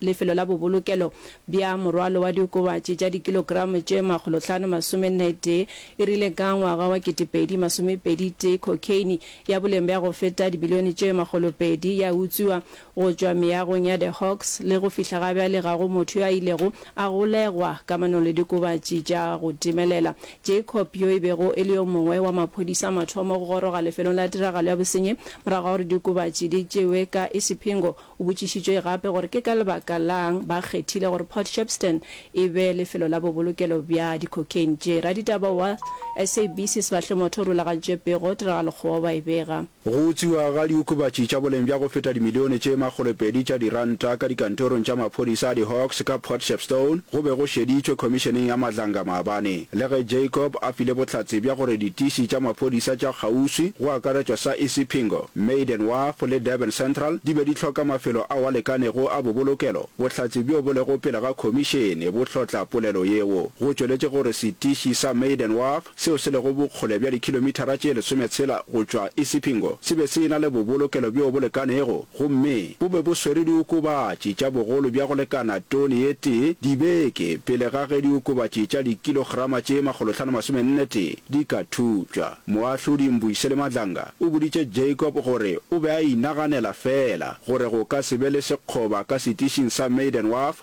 Lefelo la bobolokelo bja morwalo wa diokobatši tša dikilogramo tše makgolo hlano masome nne tee e rile ka ngwaga wa ketepedi masome pedi tee cocaine ya boleng bja go feta dibilione tše makgolo pedi ya utswiwa go tšwa meagong ya The Hawks le go fihla ga bjale ga go motho yo a ilego a golegwa kamanong le diokobatši tša go timelela. Jacob yo e bego e le yo mongwe wa maphodisa mathomo go goroga lefelong la tiragalo ya bosenyi morago ga gore diokobatši di tšewe ka Isipingo O botšišitšwe gape gore ke ka lebaka la'ng ba kgethile gore Port Shepstone e be lefelo la bobolokelo bja di-cocaine tše. Raditaba wa SABC Sbahle Motho o rulagantšwe pego tiragalo kgoba ba e bega. Go utswiwa ga diokobatši tša boleng bja go feta dimilione tše makgolopedi tša diranta ka dikantorong tša maphodisa a di-Hawks ka Port Shepstone go be go šeditšwe Khomišeneng ya Madlanga maabane. Le ge Jacob a file bohlatse bja gore ditiši tša maphodisa tša kgauswi, go akaretšwa sa Isipingo, Maiden Wharf le Durban Central, di be di hloka mafelo ao a lekanego a bobolokelo, bohlatse bjo bo lego pele ga khomišene bo hlotla polelo yeo. Go tšweletše gore setiši sa Maiden Wharf, seo se lego bokgole bja dikhilomithara tše lesometshela go tšwa Isipingo, se be se e-na le bobolokelo bjo bo lekanego. gomme bo be bo swere diokobatši tša bogolo bja go lekana tone ye tee dibeke pele ga ge diokobatši tša dikilograma tše makgolohlano masomennetee di ka thutšwa. Moahlodi Mbuyisele Madlanga o boditše Jacob gore o be a inaganela feela gore go ka se be le sekgoba ka setišing sa Maiden Wharf,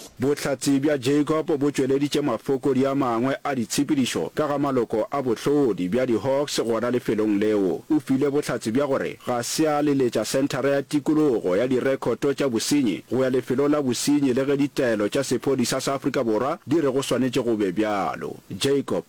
Bohlatse bja Jacob bo tšweleditše mafokodi a mangwe a ditshepedišo ka ga maloko a bohlodi bja di-Hawks gona lefelong leo. O file bohlatse bja gore ga se a leletša Senthara ya Tikologo ya Direkhoto tša Bosenyi go ya lefelong la bosenyi le ge ditaelo tša sephodisa sa Afrika Borwa di re go swanetše go be bjalo. Jacob.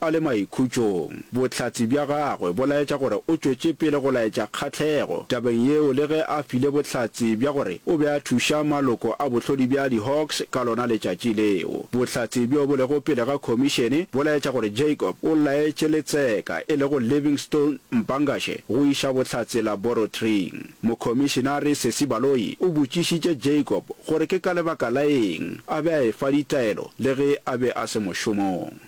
A le maikhutšong, bohlatse bja gagwe bo laetša gore o tšwetše pele go laetša kgahlego tabeng yeo le ge a file bohlatse bja gore o be a thuša maloko a bohlodi bja diHawks ka lona letšatši leo. Bohlatse bjo bo lego pele ga khomišene bo laetša gore Jacob o laetše letseka e lego Livingstone Mpangashe go iša bohlatse laborotring. Mokhomišenare Sesi Baloyi o botšišitše Jacob gore ke ka lebaka la eng a be a efa ditaelo le ge a be a se mošomong.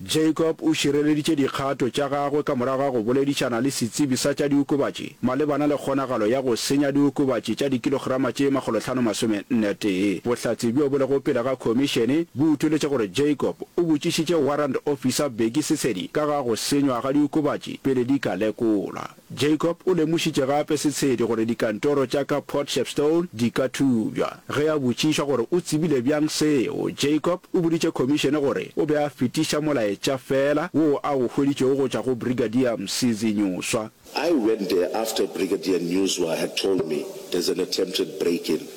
Jacob o šireleditše dikgato tša gagwe ka morago ga go boledišana le setsebi sa tša diokobatši malebana le kgonagalo ya go senya diokobatši tša dikilograma tše makgolo hlano masome nne tee. Bohlatse bjo bo lego pele ga khomišene bo utoletše gore Jacob o botšišitše Warrant Officer Bheki Sesedi ka ga go senywa ga diokobatši pele di ka lekolwa. Jacob o lemošitše gape Setshedi gore dikantoro tša ka Port Shepstone di ka thubja. Ge a botšišwa gore o tsebile bjang seo, Jacob o boditše khomišene gore o be a fetiša molaetša feela woo a o hweditšego go tšwa go Brigadier Msizi Nyuswa. I went there after Brigadier Nyuswa had told me there's an attempted break-in.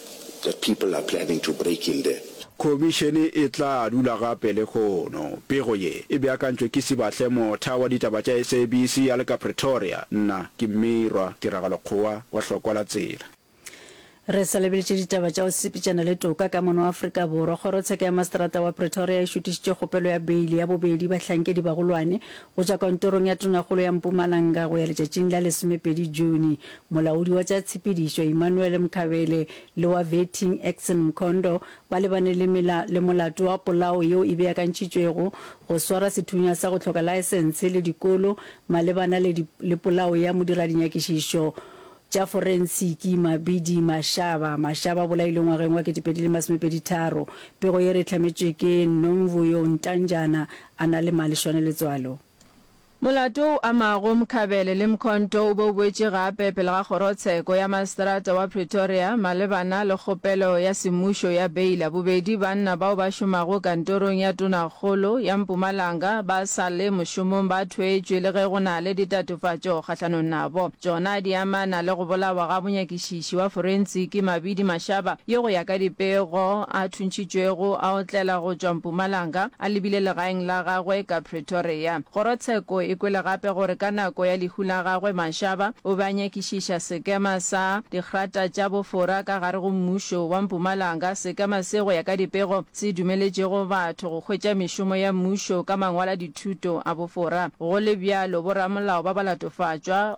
The people are planning to break in there. Khomišene e tla dula gape lehono. Pego ye e beakantšwe ke Sibahle Motha wa ditaba tša SABC a le ka Pretoria. Nna ke Mmirwa Tiragalo Kgowa wa Hlokwa la Tsela. Re sa lebeletše ditaba tša go sepetšana le toka ka mono Afrika Borwa, kgorotsheka ya maseterata wa Pretoria e šutišitše kgopelo ya beili ya bobedi bahlankedi bagolwane go tšwa kantorong ya tonakgolo ya Mpumalanga go ya letšatšing la lesomepedi June. Molaodi wa tša tshepedišo Emmanuel Mkhabele le wa Vetting Axon Mkhondo ba lebane le mela le molato wa polao yeo e beakantšitšwego, go swara sethunya sa go hloka laesense le dikolo malebana le le polao ya modiralinyakišišo tša forensiki Mabidi Mashaba. Mashaba o bolailwe ngwageng wa ketepedi le masomepedi tharo. Pego ye re e hlametšwe ke Nomvuyo Ntanjana a na le malešwane letswalo. Molato o amago Mkhabele le Mkhonto o be o boetše gape pele ga Kgorotsheko ya Maseterata wa Pretoria malebana le kgopelo ya semmušo ya beila. Bobedi banna bao ba šomago kantorong ya Tonakgolo ya Mpumalanga ba sa le mošomong ba thweetšwe le ge go na le ditatofatšo kgahlanong nabo. Tšona di amana le go bolawa ga monyakišiši wa forensiki Mabidi Mashaba yo go ya ka dipego a thuntšhitšwego a otlela go tšwa Mpumalanga a lebile legaeng la gagwe ka Pretoria. Kgorotsheko e kwele gape gore ka nako ya lehu la gagwe Mashaba o be a nyakišiša sekema sa dikgrata tša bofora ka gare go mmušo wa Mpumalanga, sekema se go ya ka dipego se dumeletšego batho go hwetša mešomo ya mmušo ka mangwaladithuto a bofora. Go le bjalo, boramolao ba ba latofatšwa,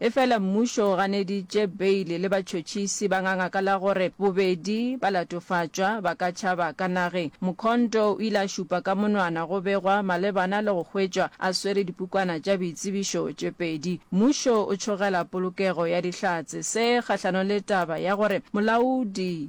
Efela mmušo o ganeditše beile le batšhotšhisi ba ngangaka la gore bobedi ba latofatšwa ba ka tšhaba ka nageng. Mkhonto o ile a šupa ka monwana go begwa malebana le go hwetšwa a swere dipukwana tša boitsebišo tše pedi. Mmušo o tšhogela polokego ya Dihlatse se kgahlanong le taba ya gore molaodi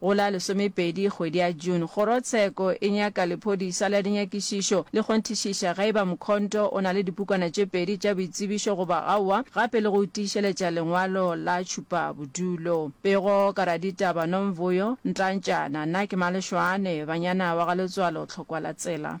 Go la lesomepedi kgwedi ya June, Kgorotsheko e nyaka lephodisa la dinyakišišo le kgonthišiša ge e ba Mkhonto o na le dipukwana tše pedi tša boitsebišo goba aowa gape le go tiišeletša lengwalo la tšhupabodulo. Pego ka raditaba Nomvuyo Ntantšana Na ke Malešoane, Banyana wa ga Letswalo Tlhokwalatsela.